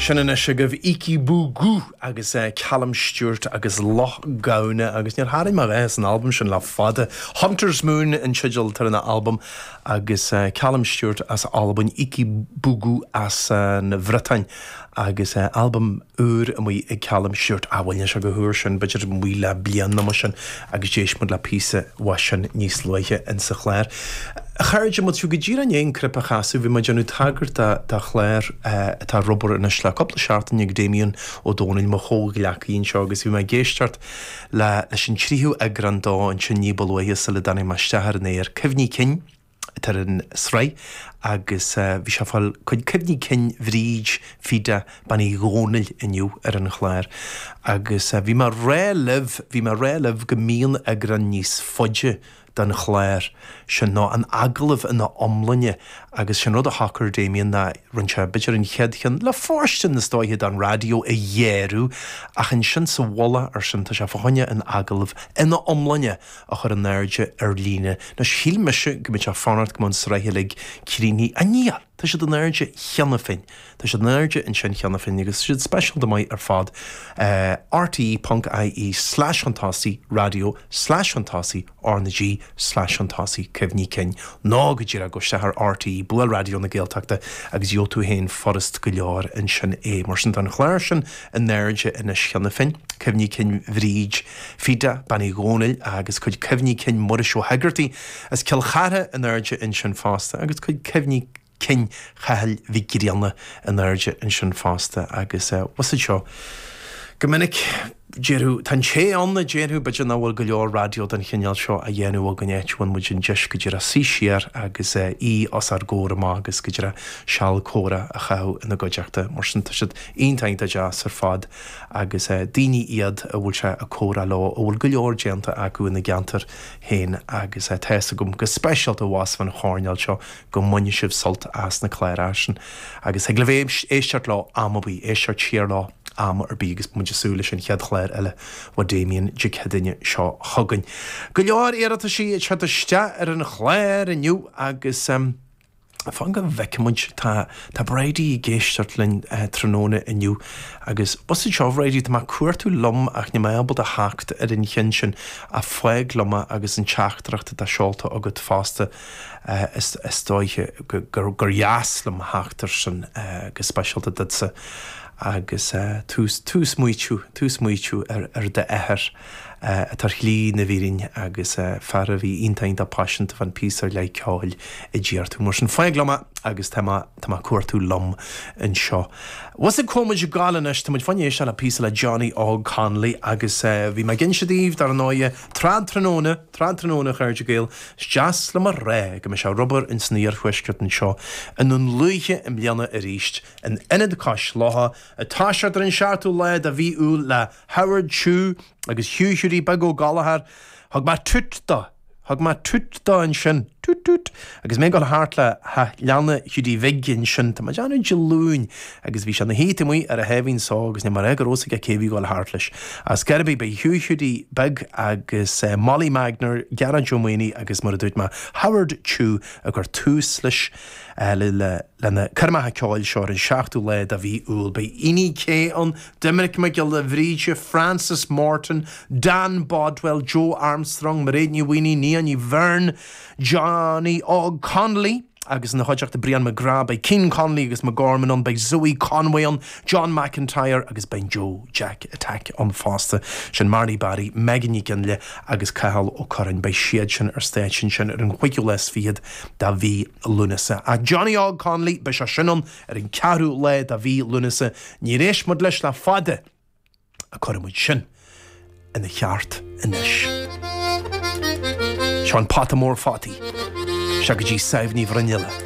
Sin anois agaibh Heikki Bourgault agus Calum Stewart agus Loch Gamhna agus níor tharraing mé a dhath as an albam sin le fada. Hunter's Moon an teideal atá ar an albam agus Calum Stewart as Albain, Heikki Bourgault as an Bhriotáin agus albam úr amuigh ag Calum Stewart. Á bhuel, níl sé chomh húr sin, b'fhéidir amuigh le bliain nó mar sin agus d'éist muid le píosa uaidh sin níos luaithe insa chlár. A chairde, má tá tú go díreach i ndiaidh an cnaipe a chasadh, bhí mé ag déanamh tagairt do chlár atá ar obair anois le cúpla seachtain ag Damien Ó Dónaill, mo chomhghleacaí anseo, agus bhí mé ag éisteacht leis an tríú eagrán dó ansin ní ba luaithe sula dtáinig mé isteach ar an aer. Cuimhní cinn. atá ar an sraith agus bhí sé ag fáil cuid cuimhní cinn Bhríd Phíde Bean Uí Dhomhnaill inniu ar an chlár agus bhí mé ag rá libh, bhí mé ag rá libh go mbíonn eagrán níos faide den chlár sin nó an agallamh ina iomláine agus sin rud a shocair Damien ná rinn sé b'fhéidir an chéad cheann le fóirstean is dóiche don raidió a ghearradh ach ansin sa mhullach ar sin tá sé fá choinne an agallamh ina iomláine a chur in airde ar líne. Anois, shíl mise go mbeinn ag fanacht go mbeadh an sraith uilig críochnaithe. Ach níl! Tá siad in airde cheana féin. Tá siad in airde ansin cheana féin agus tá siad speisialta maith ar fad. rte.ie slash chun tosaigh raidió slash chun tosaigh R na G slash chun tosaigh Cuimhní cinn, nó go díreach gabh isteach ar rte, buail Raidió na Gaeltachta agus gheobhaidh tú féin furast go leor ansin é. Mar sin, tá an chlár sin in airde anois cheana féin. Cuimhní cinn Bhríd. Fíde, Bean Uí Dhomhnaill agus cuid cuimhní cinn Mhuiris Ó hÉigeartaigh as Cill Chartha in airde ansin fosta agus cuid cuimhní cinn Chathail Mhic Grianna in airde ansin fosta agus bhfuil fhios agat seo go minic. Déarfadh, tá an té ann a déarfadh, b'fhéidir nach bhfuil go leor raidió den chineál seo á dhéanamh againn áit a bhfaigheann muid an deis go díreach suí siar agus aoi os ár gcomhair amach agus go díreach seal comhrá a chaitheamh ina gcuideachta. Mar sin tá siad iontach iontach deas ar fad. agus daoine iad a bhfuil sé ag comhrá leo a bhfuil go leor déanta acu ina gceantair féin agus tá fhios agam, go speisialta abhus fán choirnéal seo, go mbaineann sibh sult as na cláracha sin agus thig libh éisteacht leo am ar bith, éisteacht siar leo am ar bith agus muid ag súil leis an chéad chlár eile ó Damien Dé Céadaoine seo chugainn. Go leor iarrataisí ag teacht isteach ar an chlár inniu agus. Fan go bhfeicfimid. Tá Bridie ag éisteacht linn tráthnóna inniu agus bhfuil fhios agat seo, a Bhridie, tá mé ag cuartú liom ach níl mé ábalta theacht ar an cheann sin ach fág liom é agus an teachtaireacht atá seolta agat fosta is dóiche gur dheas liom theacht ar sin go speisialta duitse agus tú ag smaointiú tú ag smaointiú ar d'athair. tá ar shlí na fírinne agus fear a bhí iontach paiseanta fán phíosa ar leith ceoil a d'iarr tú. Mar sin, fág liom é agus tá mé tá mé ag cuartú liom anseo. Fhios agat cá bhfuil muid ag gabháil anois, tá muid chun éisteacht le píosa le Johnny Óg Connolly agus bhí mé ag inse daoibh, dar ndóighe, Trad Tráthnóna, Trad Tráthnóna, a chairde Gael, is deas liom a rá go mbeidh sé ar obair ins an iarthuaisceart anseo i nDún Lúiche i mbliana aríst, in Ionad Cois Locha, ag toiseacht ar an seachtú lá de mhí Iúil le. Howard Chu agus Hugh Hiúdaí Beag Ó Gallchóir, thug mé toot do, thug mé toot do ansin, toot toot, agus mé ag dul thart le teach leanna Hiúdaí Bhig ansin, tá mé ag déanamh Dé Luain, agus bhí sé ina shuí taobh amuigh ar a sháimhín só agus níl mé ag rá go raibh a fhios aige cé a bhí ag dul thart leis. Ar scor ar bith, ba é Hugh Hiúdaí Beag agus Molly Magner, Gearóid Ó Maonaigh agus mar a dúirt mé, Howard Chu a chuir tús leis, le, le, le na coirmeacha ceoil seo ar an seachtú lá de mhí Iúil. Beidh Eni Che ann, Doimnic Mac Giolla Bhríde, Frances Morton, Dan Bodwell, Joe Armstrong, Mairéad Ní Mhaonaigh, Nia Ní Bheirn, Johnny Óg Connolly, agus ina chuideachta Brian McGrath, beidh Keane, Connolly agus McGorman ann, beidh Zoë Conway ann, John McIntyre agus beidh an Joe Jack Attack ann fosta. Sin Marty Barry, Megan Nic Fhionnghaile agus Cathal Ó Curráin. Beidh siad sin ar stáitse ansin ar an chúigiú lá is fichead de mhí Lúnasa. Ach Johnny Óg Connolly, beidh sé sin ann! Ar an ceathrú lá de mhí Lúnasa níor éist muid leis le fada. Ach cuirfidh muid sin ina cheart anois. Seo an pota mór fataí isteach go dtí Sadhbh Ní Bhruinnealla.